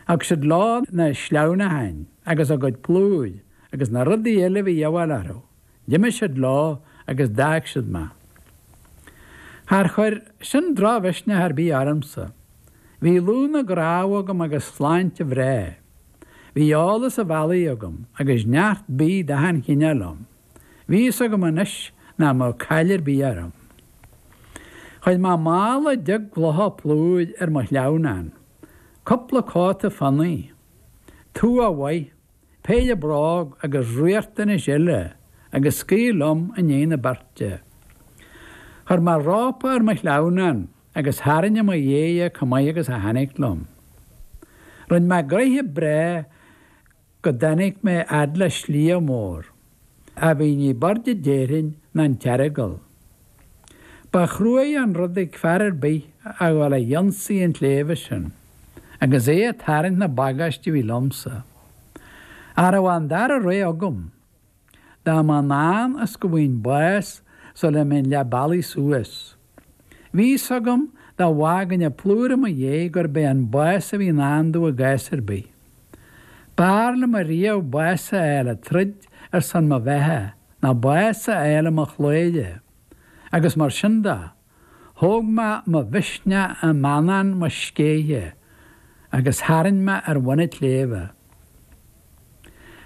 thug siad leo na sleamhnáin agus a gcuid plúir agus na rudaí eile a bhí a dhíobháil orthu, d'imigh siad leo agus d'fhág siad mé. Char chuir sin drochmhisneach ar bith ormsa. Bhí lúth na gcnámh agam agus sláinte bhreá. Bhí eolas a' bhealaigh agam agus neart bídh d'achan chineál liom. Bhí fhios agam anois nach mbeadh caill ar bith orm. Chuir mé mála deich gclocha plúir ar mo shleamhnán, cúpla cóta fionnaidh, tua mhaith, péire bróg agus riachtanais eile agus scaoil liom i ndiaidh na beirte. Chuir mé rópa ar mo shleamhnán agus tharraing i mo dhiaidh é comh maith agus a tháinig liom. Rinn mé gnoithe breá go dtáinig mé fhad le sliabh mór a bhí ní b'airde déarfainn ná an tEaragail. Ba chruaidh an rud ag fear ar bith a dhul a dh'ionsaí an tsléibhe sin, agus é a tarraingt na bagáiste a bhí liomsa. Cha rabh an dara rogha agam Dá mba i ndán is go bhfaighinn bás sula mbeinn leath bealaigh suas. Bhí fhios agam dá bhfágainn an plúr i mo dhiaidh gurb é an bás a bhí i ndán domh i gcás ar bith. B'fhearr liom ariamh bás a fháil ag troid ar son mo bheatha ná bás a fháil i mo chladhaire, agus mar sin de. Thóg mé mo mhisneach i mBanán mo Scéithe agus tharraing mé ar bhun an tsléibhe.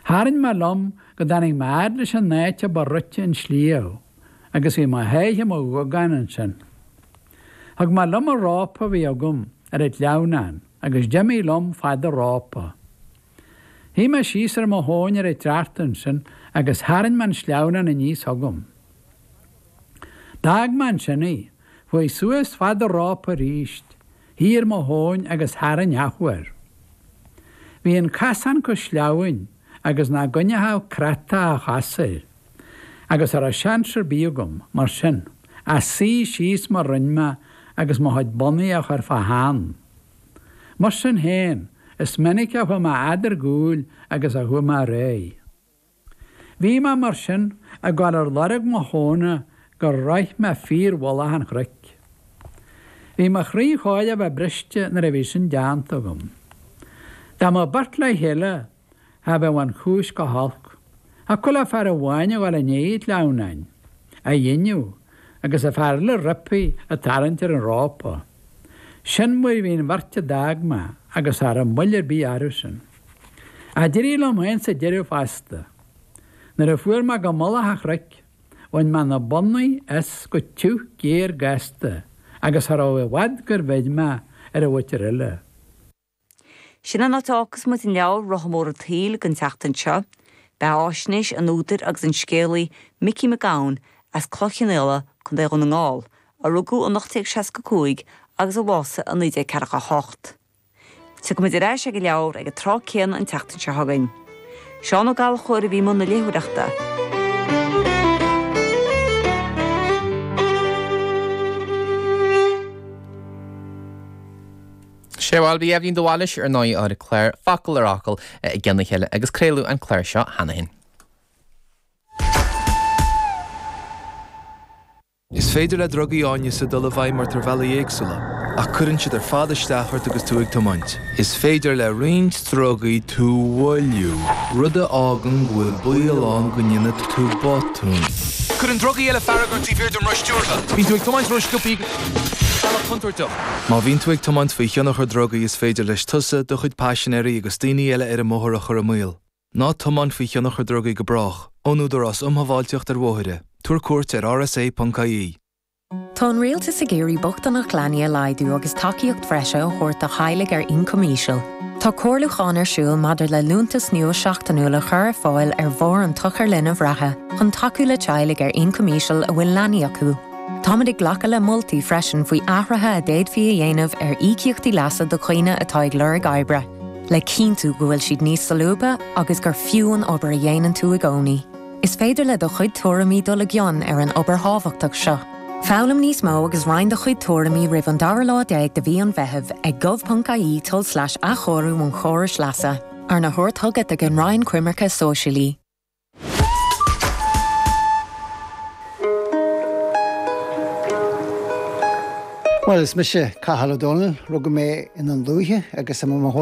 Tharraing mé liom go dtáinig mé fhad leis an áit a ba rite an sliabh agus bhí mo sháith i mo ghogán ansin. Thug mé liom an rópa a bhí agam ar an tsleamhnán agus d'imigh liom fad an rópa. Shuigh mé síos ar mo thóin ar an tsneachta ansin agus tharraing mé an sleamhnán aníos chugam. D'fhág mé ansin í. Chuaigh suas fad an rópa arís, shuigh ar mo thóin agus tharraing athuair. Bhí an casán chomh sleamhain agus nach gcoinneochadh créatúr a chos air, agus cha raibh seans ar bith agam, mar sin, ach suí síos mar rinn mé agus mo chuid bonnaí a chur fá theann. Mar sin féin, is minic a chuaigh mé a fhad ar gcúl agus a chuaigh mé ar aghaidh. Bhí mé, mar sin, ag dul ar lorg mo thóna gur shroich mé fíormhullach an chnoic. Bhí mo chroí chóir a bheith briste nuair a bhí sin déanta agam. Dá mbeadh beirt le chéile, cha bheadh an chúis chomh holc, ach thiocfadh le fear amháin a dhul i ndiaidh an tsleamhnáin á dhingeadh agus an fear eile roimpi a tarraingt ar an rópa. Sin mar a bhí an bheirt a d'fhág mé agus cha rabh moill ar bith orthusan. Ach d'éirigh liom féin sa deireadh fosta. Nuair a fuair mé go mullach an chnoic, bhain mé na bonnaí as go tiubh géar gasta agus cha rabh i bhfad gur bheir mé ar an mhuintir eile. Sin an áit a fhágfas muid an leabhar Rotha Mór an tSaoil don tseachtain seo. Beathaisnéis an údair agus an scéalaí Micí Mac Gabhann as Cloich Chionnaola, Co. Dhún na nGall, a rugadh in 1865 agus a bhásaigh in 1948. Tiocfaimid ar ais ag an leabhar ag an tráth céanna an tseachtain seo chugainn. Seán Ó Gallchóir a bhí i mbun na léitheoireachta. Sé, bhuel, bhí Eibhlín de Bhailís ar ndóigh ar an gclár Focal ar Fhocal i gceann a chéile agus craoladh an clár seo cheana féin. Is féidir le drugaí áineasa dul i bhfeidhm ort ar bhealaí éagsúla, ach cuireann siad ar fad isteach ort agus tú ag tiomáint. Is féidir le roinnt Drugaí tú mhoilliú, rud a fhágann go bhfuil baol ann go ndéanfaidh tú botún. Cuireann drugaí eile fearg ort taobh thiar den roth stiúrtha. Bíonn tú ag tiomáint ró-sciobtha ar bhealach contúirteach. Má bhíonn tú ag tiomáint faoi thionchar drugaí is féidir leis tusa, do chuid paisinéirí agus daoine eile ar an mbóthar a chur i mbaol. Ná tiomáin faoi thionchar drugaí go brách. Ón Údarás Um Shábháilteacht ar Bhóithre. Tabhair cuairt ar rsa.ie. Tá an Rialtas ag iarraidh bochtaineacht leanaí a laghdú agus tacaíocht bhreise a thabhairt do theaghlaigh ar ioncam íseal. Tá comhairliúchán ar siúl maidir le liúntas nua seachtainiúil a chur ar fáil ar bharr an tsochair linbh reatha chun tacú le teaghlaigh ar ioncam íseal a bhfuil leanaí acu. Táimid ag glacadh le moltaí freisin faoi athruithe a d'fhéadfaí a dhéanamh ar íocaíochtaí leasa do dhaoine atá ag lorg oibre, le cinntiú go bhfuil siad níos solúbtha agus gur fiú an obair a dhéanann tú i gcónaí. Is féidir le do chuid tuairimí dul i gcion ar an obair thábhachtach seo. Foghlaim níos mó agus roinn do chuid tuairimí roimh an dara lá déag de mhí an Mheithimh ag gov.ie tulslais athchóiriú an chórais leasa, arna thabhairt chugat ag an Roinn Coimirce Sóisialaí. Bhuel, is mise Cathal Ó Dónaill. Rugadh mé i nDún Lúiche agus i mo.